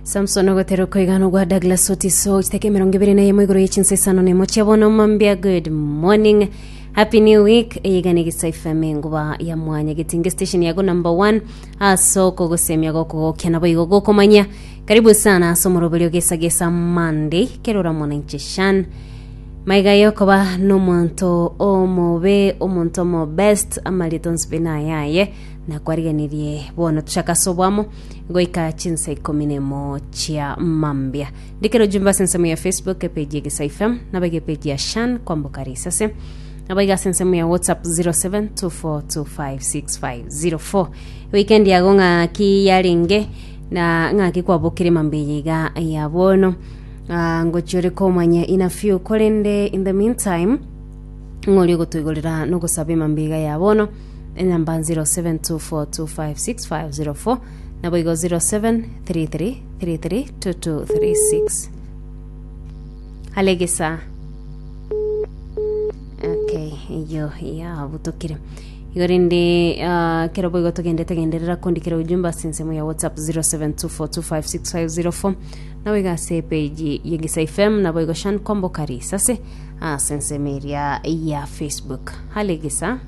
Samson ogotera okoigana ogwa Douglas Otiso chiteka emerongo ebere na yemo igoro ye chinsa isano nemo chia bono mambia good morning happy new week eyigana egisa ifm enguba ya mwanya getinge station yago number one aso kogosemia gokogokia nabo igo gokomanya karibu sana aso moroberio gesa gesa monday kerora mwananchi shan maiga yokoba nomonto omobe omonto omo best amarito nsibina yaye na kwarigenerie bono tuchaka ase obwamo goika chinsa ikomi na emo chia mambia ndikero jumba ase ensemo ya facebook epeji egesa fm nabaiga epeji ya shan kwamboka risase nabaiga ase ensemo ya whatsapp 0724256504 weekend yago ng'aki yarenge na ng'aki kwabokire mambia yaiga ya bono Ah, ngochi ore komanya ina few korende in the meantime ng'ori ogotoigorera nogosaba emambia iga ya bono enamba 0724256504 naboigo 0733332236 alegesa okay iyo yabutokire igo rende ah, kero boigo togende tegenderera kondikera ujumbe ase ensemo ya whatsapp 0724256504 naboigo ase epeji yegisa fm naboigo shan kombo karisa ase ase ensemo eria ya facebook halegesa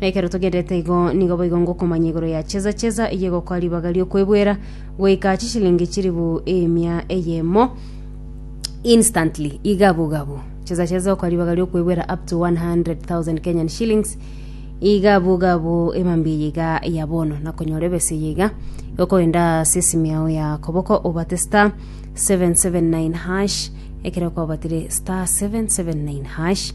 Na ekero togendererete igo, nigo boigo ngokomanya igoro ya cheza cheza eyio egokoa ribaga ri'okwebwera goika chishilingi chilifu emia eyemo instantly igabu gabu cheza cheza okoa ribaga ri'okwebwera up to 100,000 Kenyan shillings igabu gabu emambia eye iga ya bono na konyora ebesa eye iga okogenda ase esimi yao ya koboko obate star 779 hash ekero kwabatire star 779 hash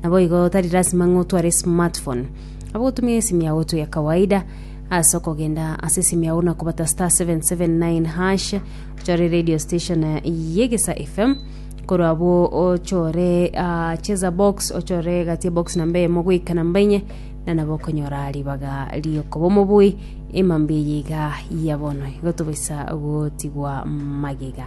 Naboigo tari lasima ng'a otware esmartphone. Abo gotumia esimu yao oto ya kawaida ase okogenda ase esimu yao na kobata star 779 hash ochore radio station eh, yegesa fm korwa abo ochore ah, cheza box ochore gati box namba eyemo goika namba enye na nabo okonyora ribaga riokoba omobui emambi eye iga ya bono igo tobaisa gotigwa magega